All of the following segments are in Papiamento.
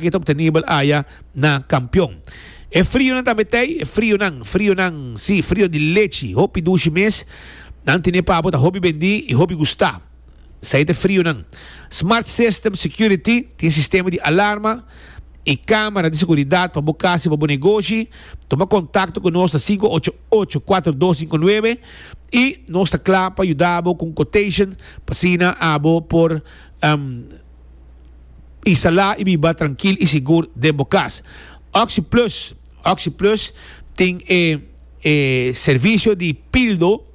Ke ta obtenibel aya na Kampion. E frionan tambe t'ei, e frionan, frionan, si, frio di lechi, hopi dushi mes, nan tine pa bo ta hopi bendi i hopi gusta. Esei t'e frionan. Smart System Security tin sistema di alarma i kamera di seguridat pa bo kas i pa bo negoshi. Tuma kontakto ku nos na sinku ocho ocho, kuater dos sinku nuebe i nos ta kla pa yuda bo ku un quotation p'asina abo por. i salá i biba trankil i sigur den bo kas. Oxi Plus, Oxi Plus tin e e servisio di pildo,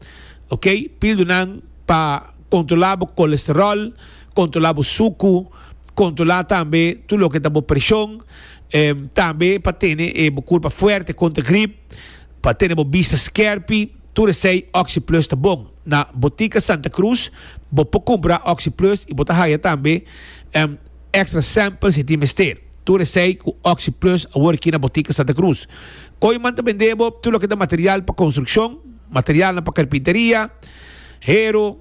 ok, pildonan pa kontrolá bo kolesteròl, kontrolá bo suku, kontrolá tambe tur loke ta bo preshon, tambe pa tene e bo kurpa fuerte kontra grip, pa tene bo bista skèrpi, tur esei Oxi Plus ta bon. Na Botica Santa Cruz bo por cumpra OxiPlus y bo ta haya tambe un extra sample si tin mester. Tur esey cu OxiPlus a worki na Botica Santa Cruz. Koyman ta bende bo tur loke ta material pa construccion, materialnan pa carpinteria, hero,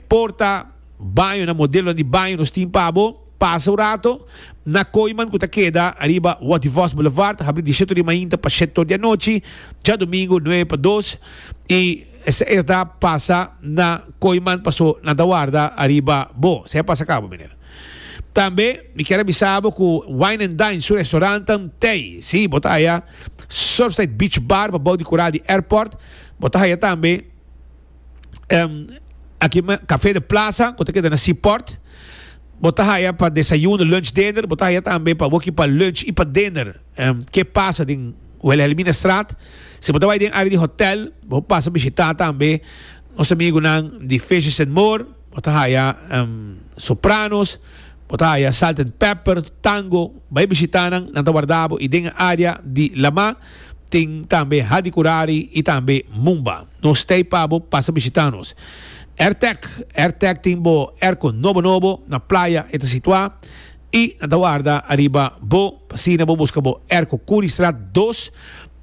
porta, bañonan, modelonan di baño nos tin pa bo. Pasa un rato na Koyman cu ta keda ariba Walt di Vos Boulevard, habri dieseto di mainta pa shet tur di anochi, djadomingo nuebe pa dos y. Esei a ta pasa na Koiman paso nan ta warda ariba bo. Esei a pasa cabo, meneer. Tambe mi kier a bisa bo cu Wine and Dine su restaurant ta ntei. Si, bo ta haya Surfside Beach Bar pa bou di cura di airport. Bo ta haya tambe aki Cafe de Plaza cu ta keda na Seaport. Bo ta haya pa desayuno, lunch, dinner. Bo ta haya tambe pa wokey pa lunch y pa dinner. Ke pasa den. Wilhelminastraat. Si bo ta bai den área di hotèl, bo por pasa bishitá tambe nos amigunan di Fishes and More. Bo ta haya Sopranos, bo ta haya Salt and Pepper, Tango. Bai bishitá nan, nan ta warda bo. I den e área di Lamá tin tambe Hadi Kurari i tambe Mumba. Nos stay pa bo pasa bishitá nos. Airtek. Airtek tin bo airco nobo nobo na playa e ta situá. I nan ta warda ariba bo, pa asina bo buska bo er ku Curriestraat dos.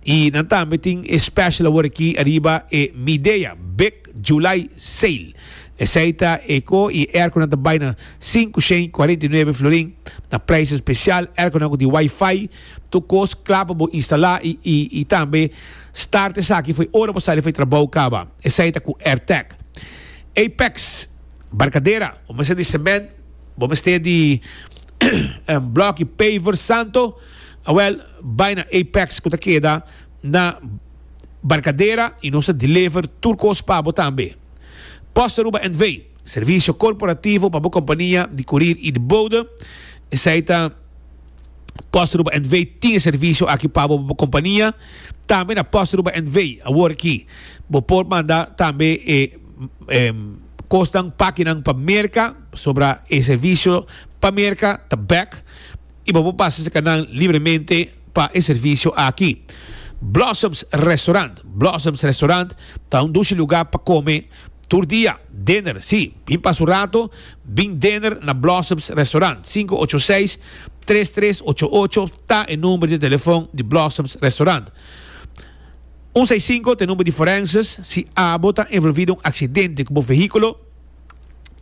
I nan tambe tin e special awor aki ariba e Midea Big July Sale. Esei ta e ko i e er ku nan ta bai na sinku shen i kuarenta i nuebe florin, na prijs especial, erkunan ku tin Wi-Fi, tur kos kla pa bo instala i i i tambe start esaki for ora bo sali for e trabou kaba. Esei ta ku Airtech, Apex, Barcadera, un mesa di cement, Bo mester di un bloki paver santo? Awel, bai na Apex ku ta keda na Barkadera i nos ta deliver tur kos pa bo tambe. Post Aruba NV, servisio korporativo pa bo kompania di kurir i di bode. Esei ta Post Aruba NV tin e servisio aki pa bo pa bo kompania. Tambe na Post Aruba NV awor aki bo por manda tambe e kosnan, pakinan pa Merka, Pasobra e servisio pa merka ta bèk i bo por pasa esaki nan libremente pa e servisio aki. Blossoms Restaurant Blossoms Restaurant ta un dushi lugá pa kome tur dia, dinner. Sí, bin pasa un rato, bin dinner na Blossoms Restaurant. Sinku ocho seis, tres tres ocho ocho ta e number di telefòn di Blossoms Restaurant. Un seis sinku ta e number di Forenses si abo ta envolví den un aksidente ku bo vehíkulo.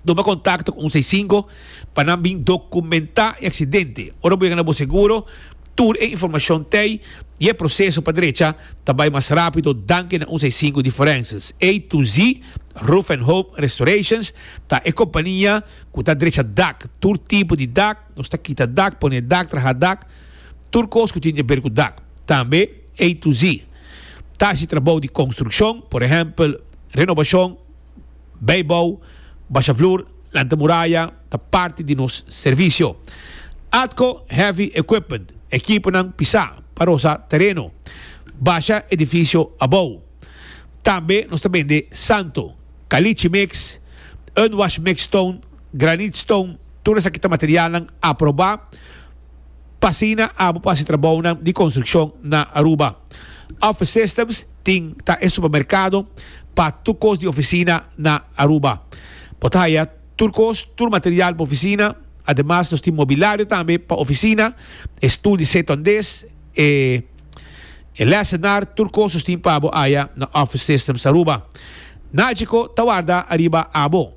Tuma kontakto ku un seis sinku pa nan bin dokumentá e aksidente. Ora bo yega na bo seguro, tur e informashon t'ei i e proseso pa drecha ta bai mas rápido danki na un seis sinku di Forenses. A to Z Roof and Home Restorations ta e kompania ku ta drecha dak, tur tipo di dak, nos ta kita dak, pone dak, traha dak, tur kos ku tin di aber ku dak. Tambe A to Z ta hasi trabou di konstrukshon, por ehèmpel, renobashon, Beibou, basha vloer, lanta muraya ta parti di nos servisio. Atco Heavy Equipment, ekiponan pisá pa rosa tereno, basha edifisio abou. Tambe nos ta bende santo, kalichi mix, unwash mix stone, granit stone, tur esaki ta materialnan aprobá. pa asina abo por hasi trabounan di konstrukshon na Aruba. Office Systems tin ta e supermerkado pa tur kos di ofisina na Aruba. Bo ta haya tur kos, tur material pa ofisina. Ademas nos tin mobilario tambe pa ofisina, e stul di seton des, e e lesenar, tur kos nos tin pa bo haya na Office Systems Aruba. Nagico ta warda ariba abo.